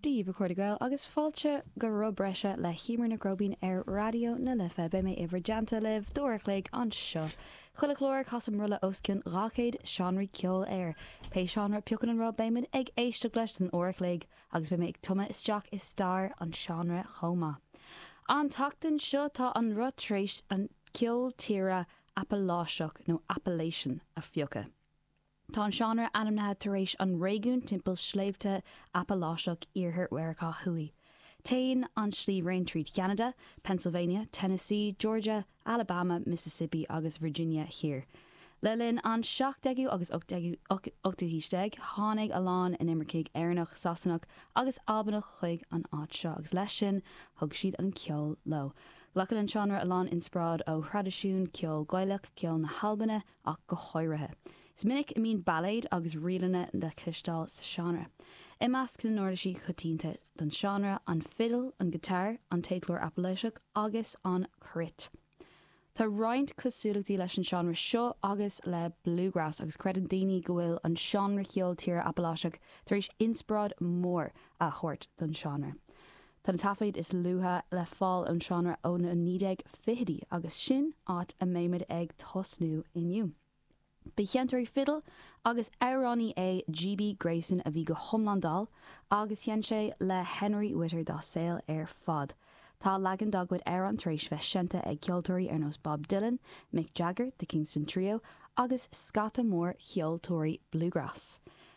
Dia daoibh, a chairde Gael, agus fáilte go roth breise le Hiúmar Nic Róibín ar Raidió na Life. Beidh mé i bhur dteannta libh d'uair a chloig anseo. Chuile chlár, casaim roth le os cionn 200 seánraí ceoil air. Pé seánra a phiocann an roth, beimid ag éisteacht leis don uair a chloig, agus beidh mé ag tumadh isteach i stair an seánra chomh maith. An tseachtain seo, tá an roth tar éis an ceol tíre Apaláiseach, nó Appalachian, a phiocadh. Tá an seánra ainmnithe tar éis an réigiún timpeall Sléibhte Apaláiseach in iarthar Mheiriceá Thuaidh. Téann an sliabhraon trí Cheanada, Pennsylvania, Tennessee, Georgia, Alabama, Mississippi agus Virginia Thiar. Le linn an 17ú agus 18ú haois déag, tháinig a lán inimircigh Éireannach, Sasanach agus Albanach chuig an áit seo, agus leis sin, thug siad an ceol leo. Glacann an seánra a lán inspioráid ó thraidisiún ceol Gaelach, ceol na hAlban, ach go háirithe. Is minic a mbíonn bailéid agus ríleanna le cloisteáil sa seánra. I measc na n-uirlisí coitianta don seánra, an fidil, an giotár, an téadchlár Apaláiseach agus an cruit. Tá roinnt cosúlachtaí leis an seánra seo agus le bluegrass, agus creideann daoine go bhfuil an seánra ceoil tíre Apaláiseach tar éis inspioráid mór a thabhairt don seánra. Tá na taifid is luaithe le fáil ón seánra ó na 1920idí agus sin áit a mbeimid ag tosnú inniu. Ba sheinnteoir fidile agus amhránaí é GB Grayson a bhí go hiomlán dall agus sheinn sé le Henry Whitter dá saol ar fad. Tá leagan dá gcuid amhrán tar éis bheith seinnte ag ceoltóirí ar nós Bob Dylan, Mick Jagger, The Kingston Trio agus scata mór ceoltóirí bluegrass.